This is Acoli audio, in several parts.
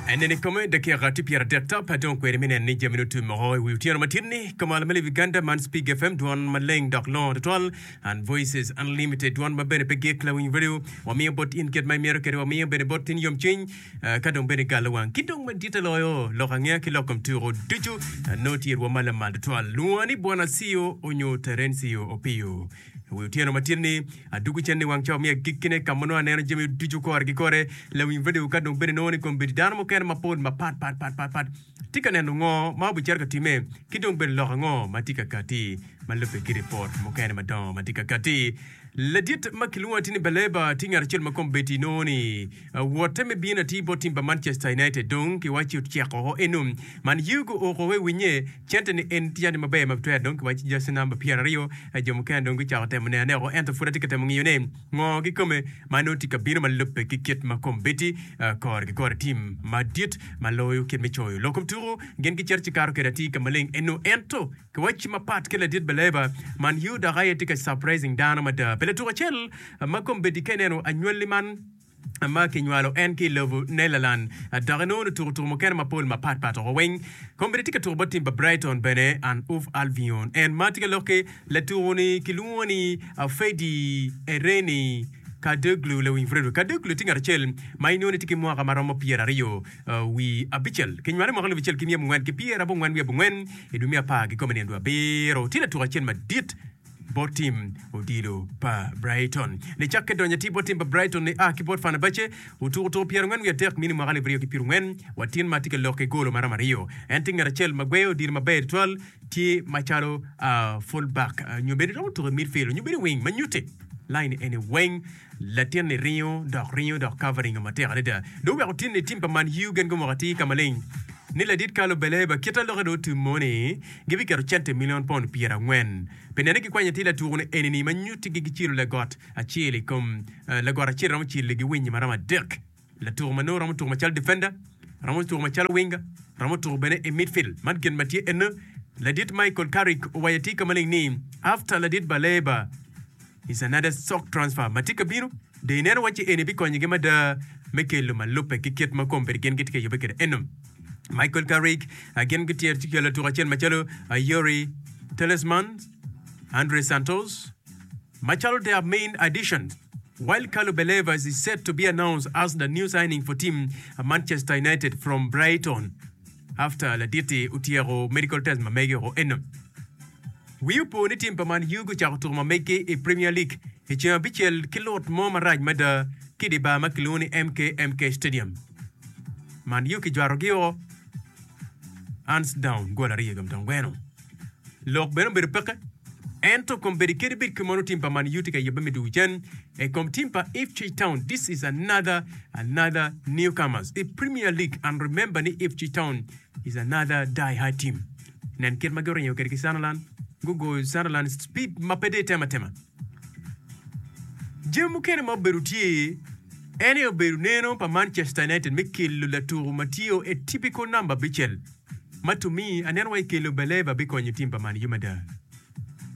Enen i kome dakika tye pyeradek tap, adong kweri me neno ni jami nongo tye moko i wi otyeno matit-ni. Kamal ma Levi Ganda man Spig FM, dwon maleng dok longo tutwal, and Voices Unlimited, dwon ma bene pe gik, Lawiny Radio, wamiyo bot in kit ma imito kede wamiyo bene bot in yomcwiny ka dong bene galo wang. Ki dong maditte loyo, lok angeya ki lok kom tuko ducu nongo tye i rwom ma lamal tutwal. Lwonga ni Bwana Siyo onyo Terencia Opio. I wi otyeno matin-ni, adwogo cen i wang ca omiya gikkine ka ma nongo aneno jami ducu kore ki kore. Lawiny redio ka dong bene nongo ni kombeddi dano mukene mapol mapatpatpatpat tye ka neno ngo ma obicito ka timme ki dong bene lok ango ma tye ka katti ma lubbe ki ripot mukene madongo ma tye ka katti. Ladit ma kilwongo atir ni Baleba tye ngat acel ma kombeddi nongo ni Awote me bino atir bot tim pa Manchester United dong kiwaci ocek oko eno. Man ye ogo oko wa i winye. Cente ni en tye jami maber ma bitwer dong kiwaci jersey number pyera aryo. Jo mukene dong gucako temo neno ne oko ento pud atye ka temo ngiyo ne ngo kikome ma nongo tye ka bino ma lubbe ki kit ma kombeddi kore ki kore tim madit ma loyo kit me coyo lok kom tuku gin gicito ci kato kwede atir ka maleng eno ento kiwaci mapat ki ladit baleba man ye dok aye tye ka surprising dano mada pi latuk acel ma kombeddi ka ineno anywali man ma kinywalo en ki i lobo Nelaland dok enongo nongo tuko tuko mukene mapol mapat pat woko weng. Kombeddi tye ka tuko bot tim pa Brighton bene and Hove Albion. En ma tye ka lok ki latuko ni kilwongo ni Fedi Ereni Kadoglu Lewing Vredwe. Kadoglu tye ngat acel ma inongo ni tye ki mwaka ma romo pyera aryo wi abicel. Kinywale mwaka alubu acel ki myem ongwen ki pyera abongwen wi abongwen i dwe me apar gikome nino dwe abiro. Tye latuko acel madit. bot tim odilo pa Brighton. Nicakke donyo atir bot tim pa Brighton nia ki bot Fenerbahce, otuko tuko pyerangwen wiye adek mini mwaka alip aryo ki pirangwen wa tin ma tye ka lokke golo maromo aryo. En tye ngat acel ma gweyo odilo maber tutwal, tye macalo uh, full back, nyo bene romo tuko i midfield, nyo bene i wing ma nyutte laine eni weng. Latinni ringo dok ringo dok Carver ringo matek adada dong wek otin ni tim pa Man U gen gumoko atir ka maleng ni ladit Carlo Baleba kit ma lokke dong otumo ni gibiketo cente milion pond pyera angwen pi nene gikwanyo atir latuku-ni eni-ni ma nyuttigi gicilo lagot acel i kom lagot acel romo cilo giwinyi ma romo adek. Latuku ma nongo romo tuku macalo defender, romo tuku macalo winger, romo tuku bene i midfield. Man gin ma tye ene, ladit Michael Carrick owaco atika maleng ni, After ladit Baleba, is another sock transfer ma tye ka bino, dong ineno wacci eni bikonyogi mada me kelo ma lubbe ki kit ma kombeddi gin gitye ka yubbe kwede eno. Michael Carrick, gin gityer ci kelo latuku acel macalo Youri Tielemans, Andre Santos, Macalo their main addition, while Carlo Believers is set to be announced as the new signing for team Manchester United from Brighton after laditi otyeko medical test ma mege o eno. Wii opo ni tim pa Man U gucako tuko ma megi i Premier League i ceng abicel ki lut mo marac mada ki i di bar ma kilwongo ni MK MK Stadium. Man U kijwarogi o ands down gol aryo i kom twon gweno. Lok bene obedo peke, ento kom bedi kede bed ki mono tim pa Man Utd ka yebbe me dwogo cen e kom tim pa Ipswich Town this is another another newcomers i Premier League and remember ni Ipswich Town is another die hard team nen kit ma guringo kede ki Sunderland gugoyo Sunderland speed ma pe de tema tema Jami mukene ma obedo tye en aye obedo neno pa Manchester United me kelo latuku ma tiyo e typical number abicel ma to me aneno wai kelo Baleba bikonyo team pa Man U mada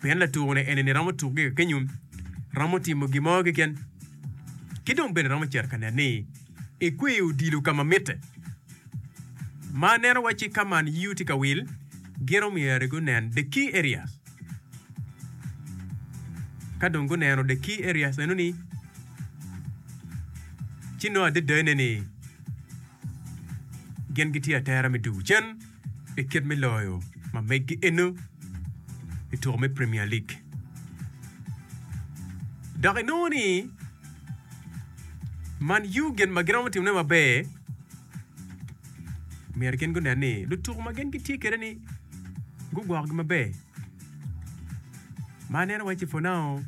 pien latuku ne enini romo tuku gi kakenyo romo timo gin mo keken ki dong bene romo cito ka nen ni ekweyo odilo ka ma mitte ma aneno waci ka Man U tye ka wil giro myero gi onen the key areas. Ka dong guneno the key areas meno ni, ci nongo adada ne ni gin gitye atera me dugo cen i kit me loyo ma meggi eno i tuko me Premier League. Dok inongo ni Man U gin ma giromo timone maber Myero gin gunen ni lutuku ma gin gitye kwede-ni gugwokogi maber. Ma aneno wacci for now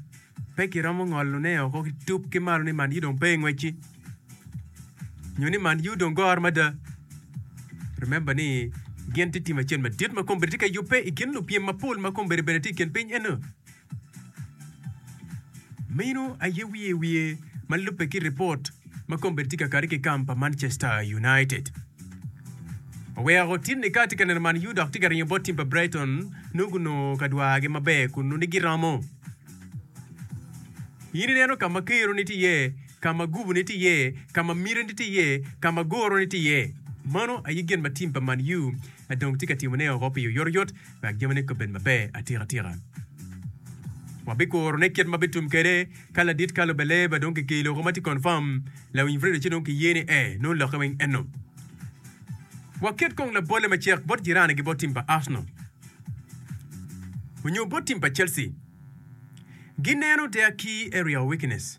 pe kiromo ngolone woko ki tup ki malo ni Man U dong pe i ngwec-ci nyo ni Man U dong goro mada. Remember ni gin tye tim acel madit ma kombeddi tye ka yubbe i kin lupyem mapol ma kombeddi bene tye i kin piny eno. Meno aye wiye wiye ma lubbe ki ripot ma kombeddi tye kakare ki kamp pa Manchester United. Oweko tin ni ka atye ka neno Man U dok tye ka ringo bot tim pa Brighton nongo gunongo ka dwargi maber kun nongo giromo. In ineno ka ma keroni tye iye, ka ma guboni tye iye, ka ma mitini tye iye, ka ma guroni tye iye. Mano aye gin ma tim pa Man U dong tye ka timone woko pi oyotoyot. wek jamine kobed maber atikatika. Wabikurone kit ma bitum kwede ka ladit kalo Beleba dong kigeyo loko ma tye konfam. Lawiny Frido ci dong kiye ni ee nongo lokke weng eno. Waket kong labolle macek bot jirane gi bot tim pa Arsenal onyo bot tim pa Chelsea. Gineno der ki area of weakness.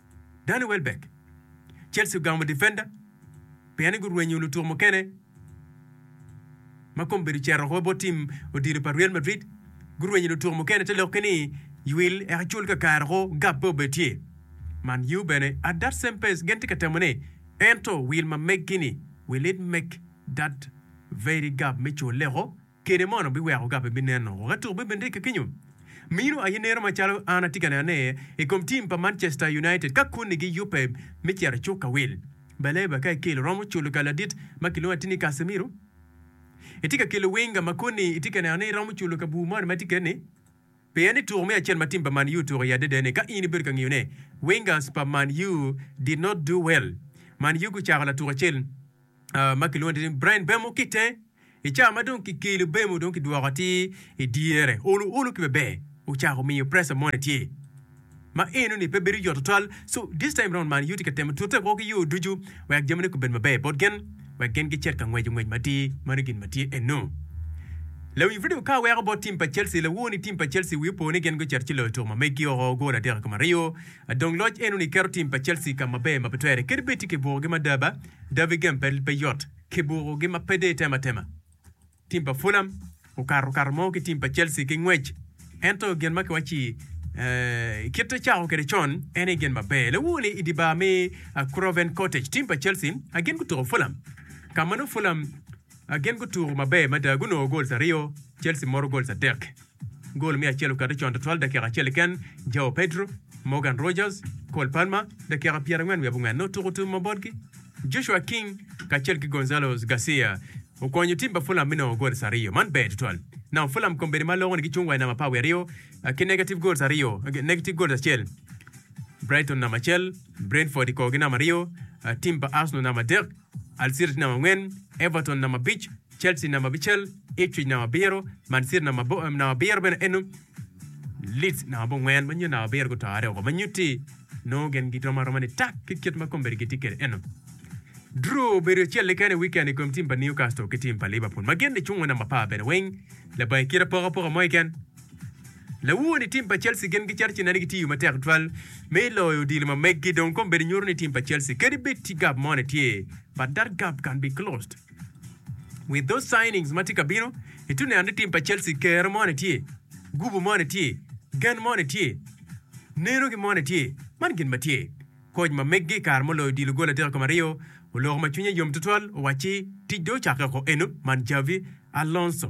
Danny Welbeck, Chelsea ogamo difenda pien ni gurwenyo lutuko mukene ma kome obedo cito woko bot tim odilo pa Real Madrid. Gurwenyo lutuko mukene te lok ki ni ywil eka cul kakare woko gap pe obed tye. Man U bene at that same pace gin tye ka temo ne ento wil ma meg-gi ni will it make that very gap me culle woko? kede mono biweko ka pe bineno woko atuk bene rik kenyo mino aye neno macalo an atye ka nene i kom tim pa Manchester United ka koni gi yubbe me cito icuk ka wil Baleba ka ikelo romo culo ka ladit ma kilwongo atir ni Casemiro itye ka kelo Wenger ma koni itye ka neno ni romo culo ka bur moni ma tye keni pien ni tuko me acel ma tim pa Man U tuko iye adada ni ka in ibedo ka ngiyo ne Wengers pa Man U did not do well Man U gucako latuk acel ma kilwongo ni Brian Bemo ki itenge. I ca ma dong kikelo Bemo dong kidwoko atir i dyere, olo olo ki maber ocako miyo pressure moni tye ma enoni pe bedo yot tutwal. So this time round Man U tye ka temo tute woko ki yo ducu wek jamine gubed maber bot gin wek gin gicit ka ngweco ngwec matir. Mano gin ma tye eno. Lawiny Freddie Okaa weko bot tim pa Chelsea lawo ni tim pa Chelsea wi opo ni gin gucito ci loyo tuko ma meggi oko gol adek i kom aryo. Dong loc enoni keto tim pa Chelsea ka maber ma pe twere kadi bed tye ki bukogi mada ba. David Game Battle pe yot ki buku gi ma pe dee tema tema. Tim pa Fulham okato kato mo ki tim pa Chelsea ki ngwec ento gin ma kiwacci kit ecako kwede con en aye gin maber. Lewu ni i di bar me Craven Cottage tim pa Chelsea gin gutuko Fulham ka ma nongo Fulham gin gutuko maber mada gunongo goals aryo Chelsea moro goals adek. Gol me acel okati con twatwal dakika acel keken, Joao Pedro, Morgan Rogers, Cole Palmer, dakika pyerangwen wiye abongwen, ne otuko tumo ma botgi. Joshua King kacel ki Gonzalo Garcia okonyo tim pa Fulham me nongo goals aryo. Man ber twatwal. Namo Fulham kombeddi ma loko ni gicung wa i namba apar wiye aryo ki negative goals aryo, negative goals acel. Brighton namba acel, Brentford i korgi namba aryo, tim pa Arsenal namba adek. Al City namba angwen, Everton namba abic, Chelsea namba abicel, Ipswich namba abiro, Man City namba abiro bene eno, Leeds namba abongwen ma nyuto namba abiro gutore woko ma nyuti nongo gin girom aroma ni tak ki kit ma kombedi gitye kwede eno. Drew obedo acel keken i wikend i kom tim pa Newcastle ki tim pa Liverpool ma gin ni cungo namba apar bene weng labange kit apokapoka mo keken. Laur ni tim pa Chelsea gin gicito ci neno gitiyo matek tutwal me loyo odilo ma meggi dong kombedo nyuto ni tim pa Chelsea kadi bed ci gap mo ne tye but that gap can be closed with those signings ma tye ka bino ituno neno ni tim pa Chelsea kero mo ne tye gubu mo ne tye gen mo ne tye neno ki mo ne tye man gin ma tye Koc ma meggi i kare muloyo odilo goli adek i kom aryo, oloko ma cwinye yom tutwal, owacci, Tic dong ocakke oko eno, man Xabi Alonso.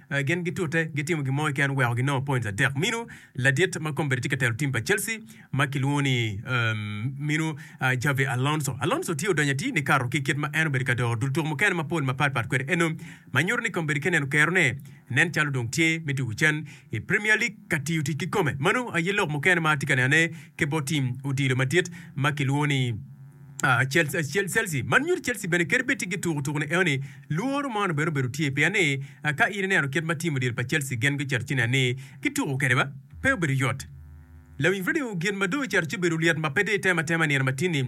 Gin gitute gitimo gin mo keken weko ginongo points adek. Minu ladit ma kombeddi tye ka telo tim pa Chelsea ma kilwongo ni minu Xabi Alonso. Alonso tye odonyo atir nikato ki kit ma en obedo ka doro dul tuko mukene mapol mapat pat kwede eno ma nyuto ni kombeddi ka neno kerone nen calo dong tye me tuko cen i Premier League ka tiyo tic ki kome. Manu aye lok mukene ma atye ka nenone ki bot tim odilo madit ma kilwongo ni Chelsea. Man nyuto Chelsea bene kadi bed tye gituko tuko ni eoni, lworo mono bene obedo tye pien ni ka in ineno kit ma tim odilo pa Chelsea gen guceto ci nen ni gituko kede ba pe obedo yot. Lawiny radio gin ma dong oceto ci obedo lyet ma pe dong itema tema nino matin ni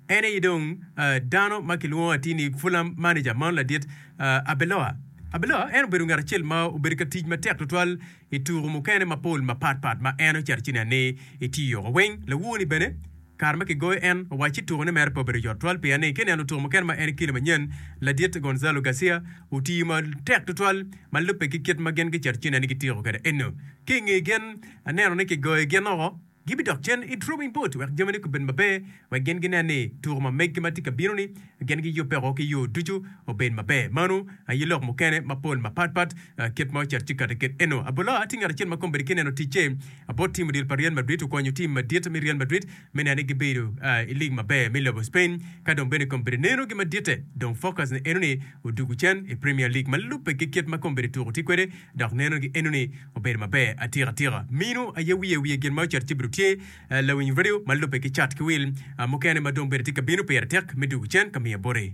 en aye dong dano ma kilwongo atir ni Fulham manager mono ladit Arbeloa. Arbeloa en obedo ngat acel ma obedo ka tic matek tutwal I tuku mukene mapol mapat pat ma en oceto ci nen ni itiyo wa weng, lawuo-ni bene kare ma kigoyo en owac ci tuku-ne mere pe obedo yot twal pien ni ki neno tuku mukene ma en i kile manyen, ladit Gonzalo Garcia otiyo ma tek tutwal ma lubbe ki kit ma gin giceto ci nen ni gitiko kwede eno. Ki i nge gin, aneno ni kigoyo gin oko. Gibidok cen i drawing board wek jamine kubed maber, wek gin ginen ni tuko ma megi ma tye ka bino-ni gin giyubbeko ki yo ducu obed maber. Mano aye lok mukene mapol mapatpat kit ma ocito ci kati kit eno. Abula tye ngat acel ma kome bene tye neno ticce bot tim odilo pa Real Madrid. Okonyo tim madit me Real Madrid me neno ni gibedo i lig maber me lobo Spain. Ka dong bene kome bene neno gi maditte, dong focus-ne eno ni odugu cen i Premier League ma lubbe ki kit ma kome bene tuko tye kwede. dok neno gi eno ni obedo maber atika tika. Minu aye wiye wiye gin ma ocito ci bedo tye lawiny radio ma lube ki cat ki wil mukene ma dong bene tye ka bino pire tek me dugu cen ka miye boti.